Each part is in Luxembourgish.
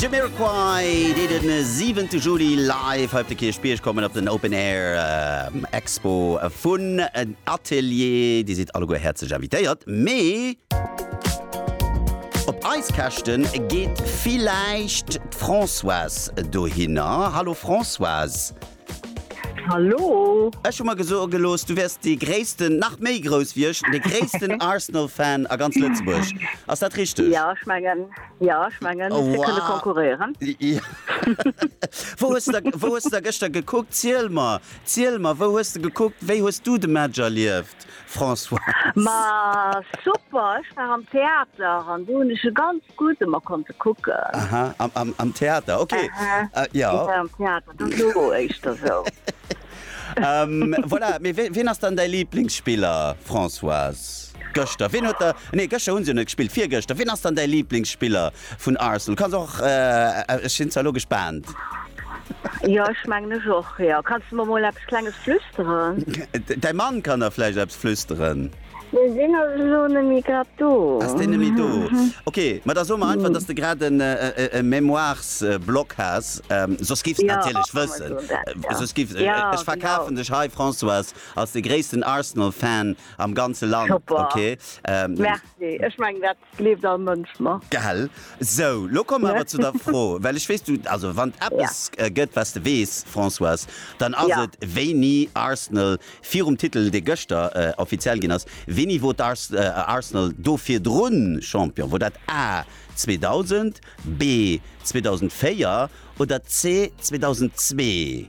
Jamiroquai, déi den 7 te Juli live hei op de Kierchbierg kommen op den Open Air Expo vun Atelier. Dir sidd alleguer häerzlech invitéiert, mee op eis Käschten geet villäicht d'Françoise dohinner. Hallo Françoise. Hallo! Ech hu mer gesoe gelooss, du wäers dee gréissten, nach méi grouss wéi ech, dee gréissten Arsenal-Fan a ganz Lëtzebuerg. Ass dat richteg? Ja, ech mengen, ja, ech mengen, Oh, fir kënne wow. konkurréieren. Ja. Wou hues de, wou hues de da gëschter gekuckt? Ziel mer, ziel mer, wou hues de gekuckt? Wéi hues du de Match erlieft, Françoise? Ma super, ech war am Theater an do hunn ech e ganz gutt ëmmer konnte kucken. Aha, am, am, am Theater, okay. Aha, Äh, ja. ja, am Theater. Voilà, mee wien ass dann däi Liblingsspiller, Françoise? Gëschter, wien huet der, nee gëschter hu se jo net gespillt, virgëschter, wien ass dann däi Liblingsspiller vun Arsenal? Kanns och, ech sinn zwar elo gespaant. Jo, ech mengen ech och, jo. Kanns de mer mol eppes Klenges flüsteren? Däi Mann kann der vläicht eppes flüsteren. Mee sinn ass elo nemmi grad do. Ass deen nemmi do. Ok, ma da soe mer einfach, dass de grad e Mémoiresblock has, soss giffs de natierlech wëssen, soss giff ech verkafen dech hei, Françoise, als de gréissten Arsenal-Fan am ganze Land. Ok. Merci. Ech mengen dat Gleeft all Mënsch mer. Gell? Sou, lo komme mer awer zu der Fro, well ech weess, du, also wann et eppes gëtt, wat s de weess, Françoise, dann ass et, wéini Arsenal virum Titel, dee gëschter offiziell ginn ass, wéini wor Arsenal do virdrun Champion? Wor dat A, 2000, B, 2004 oder C, 2002?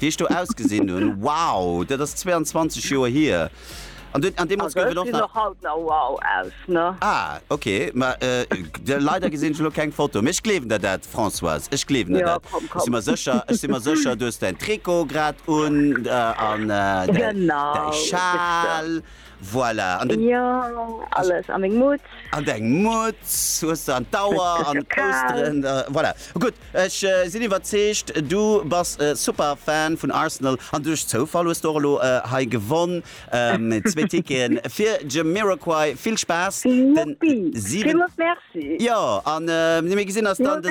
Wéi ech do ausgesinn hunn, wow! Dat ass 22 Joer hier. An du, an deemools gouf et och nach. Also ech gesinn och haut nach wow aus, ne? Ah, ok. Ma de, leider gesinn ech elo keng Foto. Mee ech gleewen der dat, Françoise. Ech gleewen der dat. Ech si mer sécher, ech si mer sécher, du hues däin Trikot grad un an däi, däi Schal. Voilà, an den. Jo, alles, an meng Mutz. An deng Mutz hues de, an d'Auer, an d'Pousteren, voilà. Gutt, ech sinn iwwerzeegt, du bass e super Fan vun Arsenal, an duerch Zoufall hues de och elo hei gewonn, zwee Ticketen fir Jamiroquai. Vill Spaass den 7. Jo, an mir gesinn eis dann de,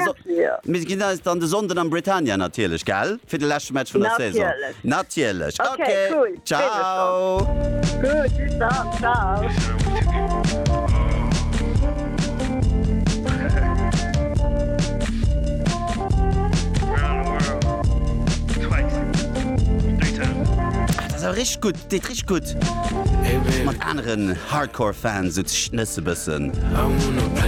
mir gesinn eis dann de Sonnden am Britannia natierlech, gell? Fir de leschte Match vun der Saison. Natierlech. Natierlech. Ok, cool. Freet mech schon. Ciao. Gutt, bis dann. Ciao. Dat ass awer richteg gutt, deet richteg gutt mat aneren Hardcore-Fans, sou ze schnësse bëssen.